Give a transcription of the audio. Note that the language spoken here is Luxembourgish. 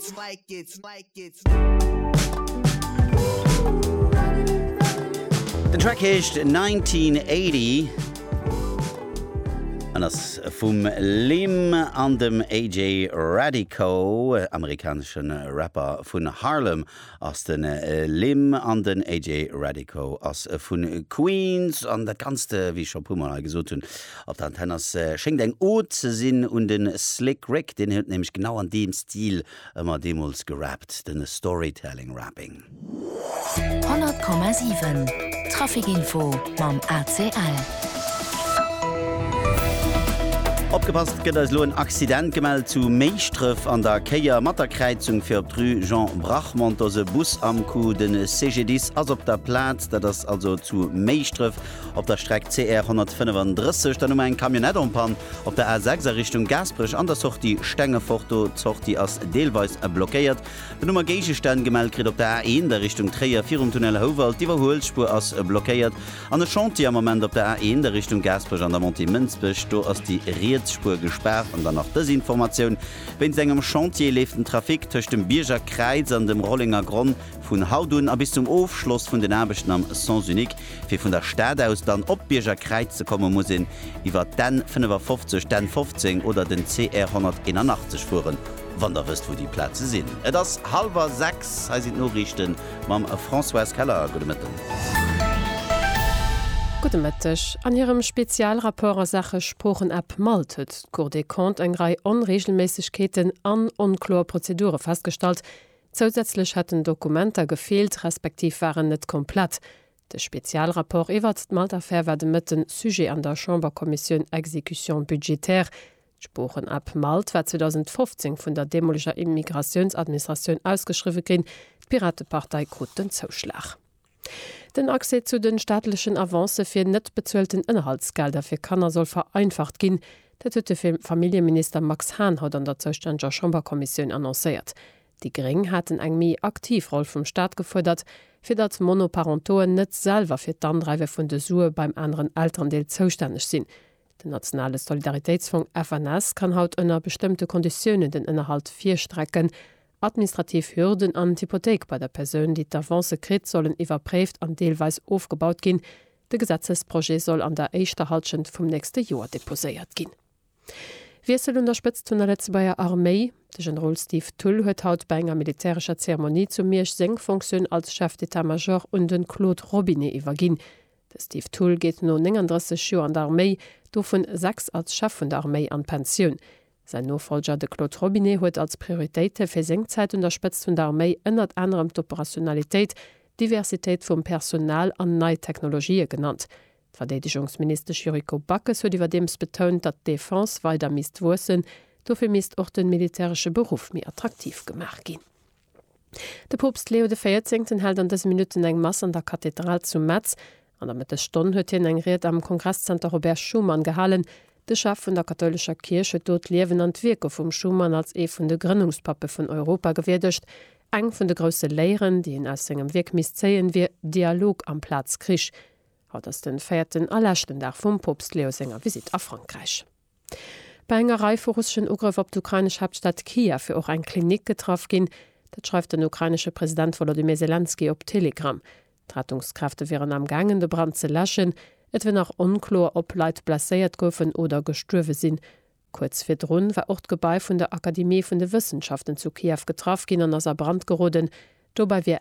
it's like it's like it's Den Track heescht 1980 an ass vum Lim an dem AJ Radico, amerikaneschen Rapper vun Harlem. ass den Lim an den AJ Radico ass vun Queens an dat ganzt wéi ech scho puer mol hei gesot hunn op der Antenn ass schéngt eng Ode ze sinn un den Slick Rick, deen huet nämlech genau an deem Stil ëmmer deemools gerappt, den Storytelling Rapping. 100,7 Traffic Info mam ACL. Opgepasst, et gëtt eis elo en Accident gemellt zu Méischtrëff an der Kéier mat der Kräizung fir op d'Rue Jean Brachmond. Do ass e Bus am Coup. De CGDIS ass op der Plaz. Dat ass also zu Méischtrëff op der Streck CR 135. Dann hu mer eng Camionnette en Panne op der A6 a Richtung Gaasperech an der Sortie Stengefort. Do d'Sortie ass deelweis blockéiert. Dann hu mer Géigestänn gemellt kritt op der A1 a Richtung Tréier virum Tunnel Houwald. D'Iwwerhuelspur ass blockéiert. An e Chantier am Ament op der A1 a Richtung Gaasperech an der Montée Mënsbech. Do ass déi riets Spuer gespaart. An dann nach dës Informatioun, Wéinst engem Chantier leeft den Trafic tëscht dem Bierger Kräiz an dem Rollenger Gronn vun haut un a bis zum Ofschloss vun den Aarbechten am Sens unique. Fir vun der Stad aus dann op d'Bierger Kräiz ze kommen, muss een iwwer d'N 55, d'N 15 oder den CR 181 fueren, wann der wësst wou déi Plaze sinn. Et ass hallwer 6, hei sinn d'Noriichten. Mam Françoise Keller, gudde Mëtten. Gudde Mëtteg. An hirem Spezialrapport a Saache Sproochen-App malt huet d'Cour des Comptes eng Rei Onreegelméissegkeeten an onkloer Prozedure festgestallt. Zousätzlech hätten Dokumenter gefeelt, respektiv waren net komplett. De Spezialrapport iwwert d'Malt-Affär war de Mëtten Sujet an der Chamberkommissioun Exécution budgétaire. D'Sproochen-App Malt war 2015 vun der deemoleger Immigratiounsadministratioun ausgeschriwwe ginn, d'Piratepartei krut den Zouschlag. Den Accès zu de staatlechen Avancë fir net bezuelten Ënnerhaltsgelder fir Kanner soll vereinfacht ginn. Dat huet de Familljeminister Max Hahn haut an der zoustänneger Chamberkommissioun annoncéiert. Déi Gréng haten eng méi aktiv Roll vum Staat gefuerdert, fir datt Monoparentoen net selwer fir d'Andreiwe vun de Sue beim aneren Elterendeel zoustänneg sinn. Den nationale Solidaritéitsfong, FNS, kann haut ënner bestëmmte Konditiounen den Ënnerhalt virstrecken. Administrativ Hürden an d'Hypothéik bei der Persoun, déi d'Avance kritt, sollen iwwerpréift an deelweis ofgebaut ginn. De Gesetzesprojet soll an der éischter Hallschent vum nächste Joer deposéiert ginn. Wiessel un der Spëtzt vun der Lëtzebuerger Arméi, De Generol Steve Thull huet haut bei enger militärescher Zeremonie zu Miersch seng Fonctioun als Chef d'État-Major un de Claude Robinet iwwerginn. De Steve Thull geet no 39 Joer an der Arméi, dovun 6 als Chef vun der Arméi, an d'Pensioun. Säin Nofollger, de Claude Robinet, huet als Prioritéite fir seng Zäit un der Spëtzt vun der Arméi ënnert anerem d'Operationalitéit, d'Diversitéit vum Personal an nei Technologië genannt. D'Verdeedegungsministesch Yuriko Backes huet iwwerdeems betount, datt d'Defense weider misst wuessen. Dofir misst och de militäresche Beruff méi attraktiv gemaach ginn. De Poopst Leo de Véierzéngten hält an dëse Minutten eng Mass an der Kathedral zu Metz. An der Mëttesstonn huet hien eng Ried am Kongresszenter Robert Schuman gehalen. De Chef vun der kathoulescher Kierch huet do d'Liewen an d'Wierke vum Schuman als ee vun de Grënnungspappe vun Europa gewierdegt. Eng vun de grousse Léieren, déi een aus sengem Wierk misst zéien, wier Dialog amplaz Krich. Haut ass de véierten a leschten Dag vum Poopst Leo senger Visitt a Frankräich. Bei enger Rei vu russeschen Ugrëff op d'ukrainesch Haaptstad Kiew wier och eng Klinik getraff ginn. Dat schreift den ukrainesche President Wolodymyr Selenskyj op Telegram. D'Rettungskräfte wieren am gaangen, de Brand ze läschen. Et wier nach onkloer, ob Leit blesséiert goufen oder gestuerwe sinn. Kuerz virdru war och d'Gebai vun der Akademie vun de Wëssenschaften zu Kiew getraff ginn an ass a Brand geroden. Dobäi wier